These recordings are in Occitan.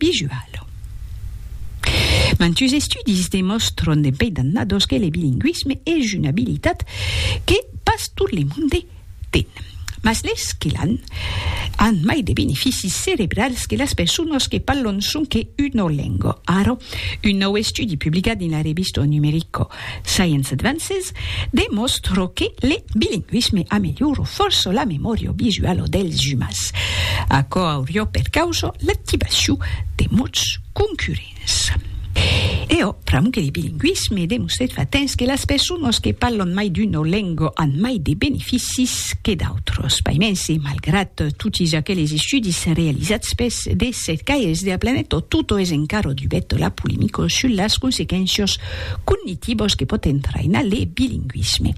visual. Mantus estudis demòstron de pei dannados que le bilingüisme es una abilitat que pas tot le monde ten. Mas les que l'an, an mai de beneficis cerebrals que las personas que parlon sonque una lenga. Ara, un nòu estudi publicat dins la revista Numerico Science Advances demòstro que le bilingüisme ameliora fòrça la memòria visuala dels umans. Aquò auriá per causa l'activacion de mots concurrents. Eo pr'amo que le bilingüisme demostrèt fa temps que las personas que parlan mai d'una lenga an mai de beneficis que d'autras. Paimens, e malgrat totis aqueles estudis realizats pels de cercaires de la planeta, tot es encara dubèt la polemica sus las consequéncias cognitivos que pòt entrainar le bilingüisme.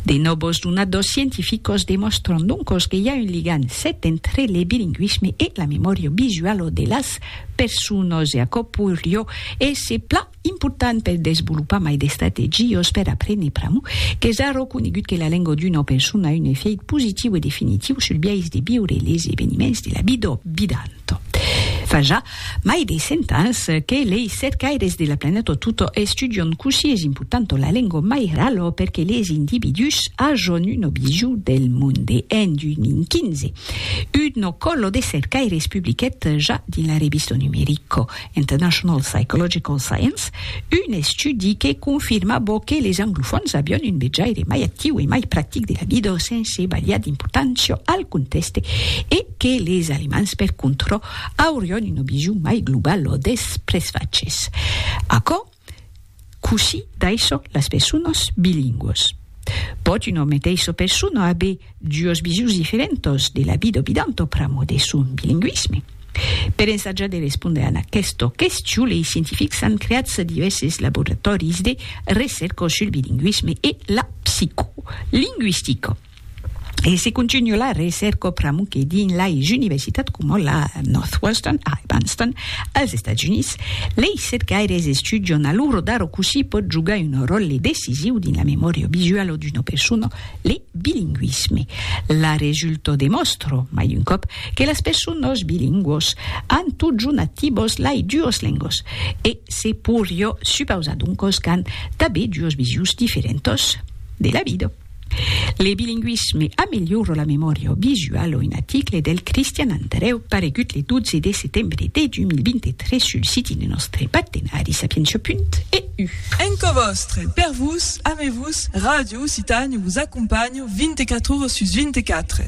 De nòvos donadors scientificos demòstran doncos que i a un ligam sèt entre le bilingüisme e la memòria visuala de las personas e aquò poiriá èsser plan important per desvolopar mai d'estrategias per aprene pr'amor qu'es ara conegut que la lenga d'una persona a un efèit positiu e definitiu sul biais de viure les eveniments de la vida. Tot. Fa ja mai de cent ans que lei cercaires de la planeta tota estudion cossí es importanta la lengua mairala per que les individús ajon una visu del monde. En 2015, una còla de cercaires publiquèt ja dins la revista Numerico International Psychological Science, un estudi que confirma bo que les anglofòns avion un vejaire mai actiu e mai practic de la vida sense balhar d'importància al contèxte e que les alemands per contra aurion una vision mai globala des presfachs. Aquò, Cossí d'aisò las personas bilingüas. Pòt una meteissa persona aver duos visions diferentas de la vida bidanta pr'amor de son bilingüisme? Per ensajar de respondre a aquesta question lei scientifics an creat divèrses laboratòris de recèrca sul bilingüisme e la psicolingüistica. E se continua la recèrca pr'amor que dins lais universitats coma la Northwestern a Evanston, als Estats Units, lei cercaires estudian a l'ora d'ara cossí pòt jogar un ròtle decisiu dins la memòria visuala d'una persona le bilingüisme. La resulta demòstra, mai d'un còp, que las personas bilingüas an totjorn activas lei duas lengas e se poiriá supausar doncas qu'an tanben duas visius diferentas de la vida. Le bilingüisme amelhora la memòria visuala Un aticle del Cristian Andrèu paregut le 12 de setembre de 2023 sul siti de nòstre partenari Sapientia Punt EU. Enco vòstre, per vos, ame vos, Ràdio Occitània vos acompanha 24 ores sus 24.